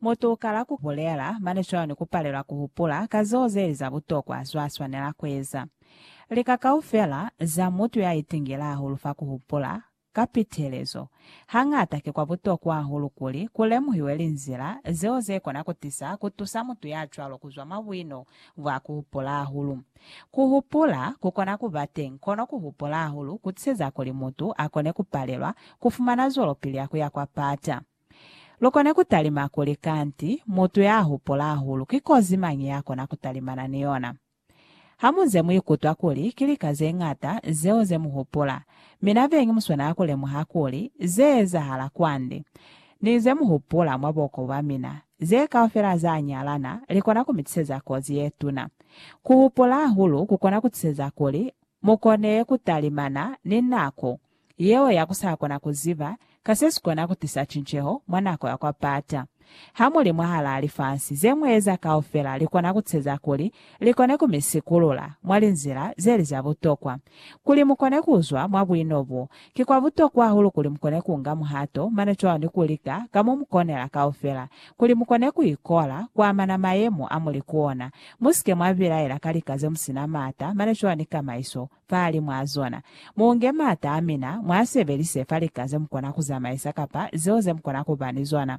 Mutu ukala ku bulela, mane cwalo ni ku palelwa ku hupula ka zeo zeli za butokwa zwa swanela ku eza. Lika kaufela za mutu ya itingile hahulu fa ku hupula ka pitelezo. Hañata ki kwa butokwa hahulu kuli ku lemuhiwe linzila zeo ze kona ku tisa ku tusa mutu ya cwalo ku zwa mwa buino bwa ku hupula hahulu. Ku hupula ku kona ku ba teñi, kono ku hupula hahulu ku tiseza kuli mutu a kone ku palelwa ku fumana zwelopili ya ku ya kwa pata. Lu kone ku talima kuli, Kanti, mutu ya hupula hahulu ki kozi mañi ya kona ku talimana ni yona? Ha mu nze mu ikutwa kuli ki lika ze ñata zeo ze mu hupula, mi na beñi mu swanela ku lemuha kuli ze ezahala kwande. Ni ze mu hupula mwa buko bwa mina, ze kaufela za nyalana li kona ku mi tiseza kozi ye tuna. Ku hupula hahulu ku kona ku tiseza kuli mu kone ku talimana ni nako yeo ya ku sa kona ku ziba ka se si kona ku tisa cinceho mwa nako ya kwa pata. Ha mu li mwahalaa lifasi, ze mu eza kaufela li kona ku tiseza kuli Li kone ku mi sikulula mwa linzila ze li za butokwa. Kuli mu kone ku zwa mwa buino bo, ki kwa butokwa hahulu kuli mu kone ku nga muhato mane cwalo ni ku lika ka mo mu konela kaufela kuli mu kone ku ikola ku amana mayemo a mu li ku ona. Mu si ke mwa bilaela ka lika ze mu si na maata mane cwalo ni kamaiso. fahali mwa zona. Muunge maata amina, muasebelise fa lika zemukona kuzamaisa kapa zeo zemukona kuba ni zona.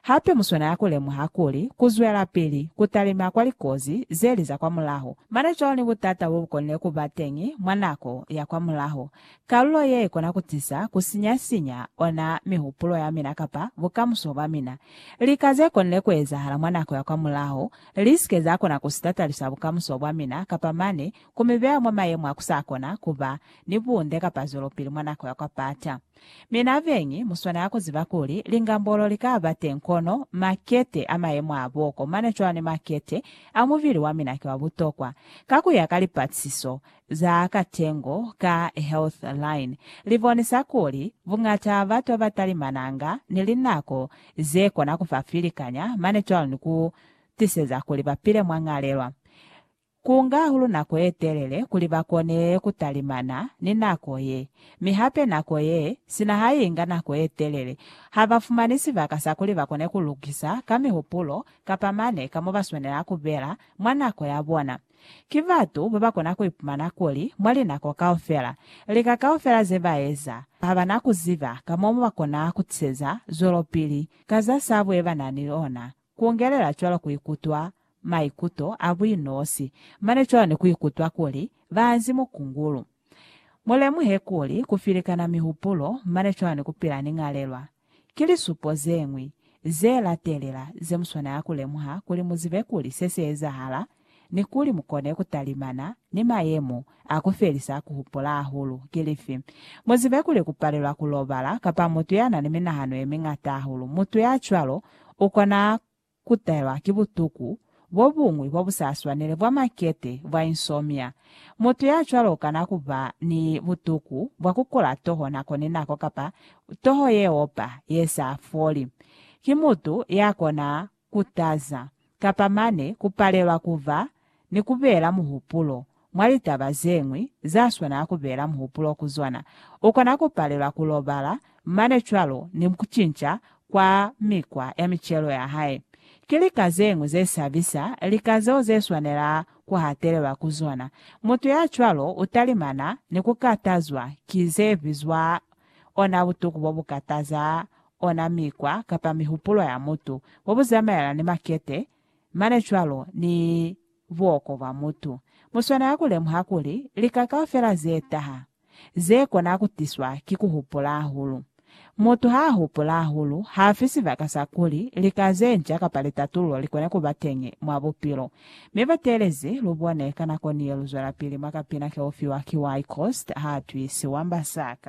Hape muswanela kulemuha kuli, kuzwelapili kutalima kwa likozi zeli za kwa mulaho, mane cwalo ni butata bobukonile kuba teñi mwa nako ya kwa mulaho, kalulo ye ikona kutisa kusinya-sinya ona mihupulo yamina kapa bukamuso bwamina. Lika zekonile kuezahala mwa nako ya kwa mulaho, lisike zakona kusitatalisa bukamuso bwamina kapa mane ku mi beya mwa mayemo a ku sa kona ku ba ni bunde kapa zwelopili mwa nako ya kwa pata. Mi nabeñi, mu swanela ku ziba kuli lingambolo li ka ba teñi kono makete a mayemo a boko mane cwalo ni makete a mubili wa mina ki wa butokwa. Ka ku ya ka lipatisiso za katengo ka Healthline, li bonisa kuli buñata ba batu ba ba talimananga ni linako ze kona ku fa filikanya mane cwalo ni ku tiseza kuli ba pile mwa ñalelwa Ku nga hahulu nako ye telele kuli ba kone ku talimana ni nako ye, mi hape nako ye, sina ha i nga nako ye telele, ha ba fumani sibaka sa kuli ba kone ku lukisa ka mihupulo kapa mane ka mo ba swanela ku bela mwa nako ya bona. Ki batu ba ba kona ku ipumana kuli mwa linako kaufela, lika kaufela ze ba eza, ha ba na ku ziba ka mo ba kona ku tiseza zwelopili ka za sabu ye ba na ni ona. Kungelela cwalo kuikutwa maikuto a buinosi, mane cwalo ni kuikutwa kuli baanzi mukungulu. Mulemuhe kuli kufilikana mihupulo mane cwalo ni kupila ni ñalelwa, ki lisupo zeñwi ze latelela ze muswanela kulemuha kuli muzibe kuli se si ezahala ni kuli mukone kutalimana ni mayemo a kufelisa kuhupula hahulu ki lifi. Muzibe kuli kupalelwa kulobala kapa mutu yanani minahano yemiñata hahulu, mutu yacwalo ukona kutahelwa ki butuku bobuñwi bobusaswanele bwa makete bwa insomnia. Mutu yacwalo ukana kuba ni butuku bwa kukula toho nako ni nako kapa toho yeopa yesa foli. Ki mutu yakona kutaza, kapa mane ku palelwa ku ba ni ku bela muhupulo mwa litaba ze ñwi za swanela ku bela muhupulo ku zona. U kona ku palelwa ku lobala mane cwalo ni ku cinca kwa mikwa ya micelo ya hae. Ki lika ze ñwi ze sabisa, lika zeo ze swanela ku hatelelwa ku zona. Mutu ya cwalo u talimana ni ku katazwa ki ze bizwa ona butuku bobukataza, ona mikwa kapa mihupulo ya mutu, bobuzamaelana ni makete, mane cwalo ni buoko bwa mutu. Muswanela kulemuha kuli lika kaufela zetaha, zekona kutiswa ki kuhupula hahulu. Mutu haahupula hahulu, haafi sibaka sa kuli lika zenca kapa litatululo likone kuba teñi mwa bupilo. Mi batelezi, lubone, ka nako niye luzwelapili mwa kapina keufiwa ki Why Cost Haatwisi Wamba Saka?